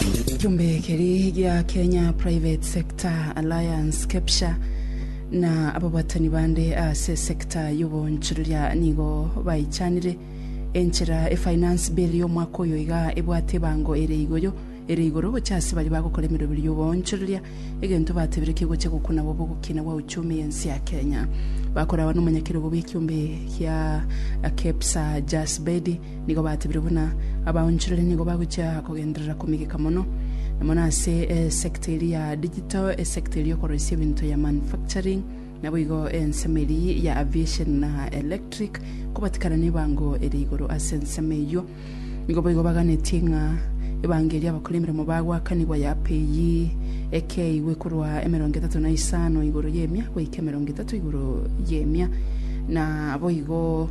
Ekiombe keri gia Kenya Private Sector Alliance, KEPSHA, na ababwatani bande ase esecta y'oboonchoreria nigo baichanire enchera e Finance Bill y'omwaka oyo iga ebwate ebango ere igoyo ere igoro gochia ase baria bagokora emeroberi y'oboonchoreria, egento batebire kegochia gokuna bobe ogokina gwa uchumi y'ense ya Kenya. Bakoragwa n'omonyakerogo bw'ekiombe gia KEPSHA Jas Bedi Nigo batebire buna abaonchoreri nigo bagochia kogenderera komegeka mono, na mono ase esector eria ya digital, esector eria y'okoroisia ebinto ya manufacturing, naboigo ensemo eria ya aviation na electric, kobatikana nebango eria igoro ase ensemo eyio. Nigo boigo baganetie ng'a ebango eria abakora emeremo bagoakanigwa yape eyi ekeigwe korwa emerongo etato na isano igoro y'emia goika emerongo etato igoro y'emia, na boigo.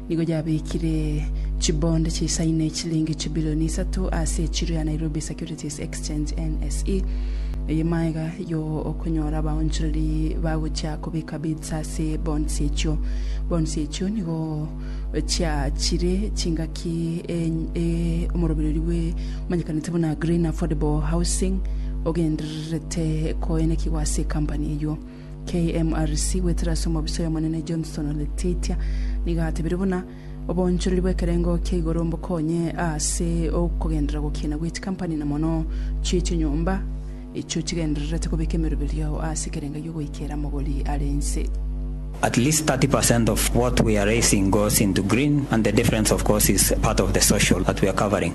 Nigo yabekire chibond chisaine echilingi chibilioni isato ase echiro ya Nairobi Securities Exchange, NSE. Eye maega yo okonyora abaonchoreri bagochia kobeka bids ase bonds echio. Bonds echio nigo chiachire chingaki enye omorobererio bwe omanyekanete buna Green Affordable Housing ogendererete koenekigwa ase ecompany eyio. KMRC goetera ase omobisa oy'Omonene Johnston Leteitia nigo atebire buna oboonchoreri bw'ekerengo kia igoro mbokonye ase okogenderera gokiina gwe chikampani na mono chie chinyomba echio chigendererete kobeka emeroberio ase ekerengo gi'ogoikera amagori are inse. At least 30 percent of what we are raising goes into green and the difference of course is part of the social that we are covering.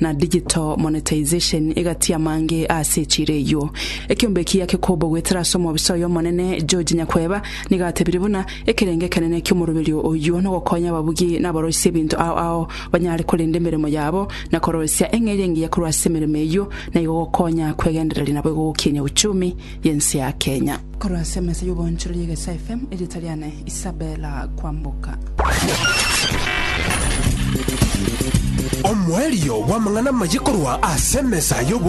na digital monetization egati amange ase echira eyio. Ekiombe eki yake kobo goetera ase omobisa oyo omonene, George Nyakweba, nigo atebire buna, Ekerenge ekenene ki'omoroberio oyio nogokonya ababugi na aboroisia ebinto ao ao banyare korenda emeremo yabo na koroisia eng'eria engiya korwa ase emeremo eyio, na igo gokonya kwegendereria nabo igo gokinyia uchumi y'ense ya Kenya. Korwa ase emesa y'oboonchoreria Egesaa FM, erieta riane Isabella Kwamboka. Omoerio bw'amang'ana amaye korwa ase emesa y'oboonchoreria.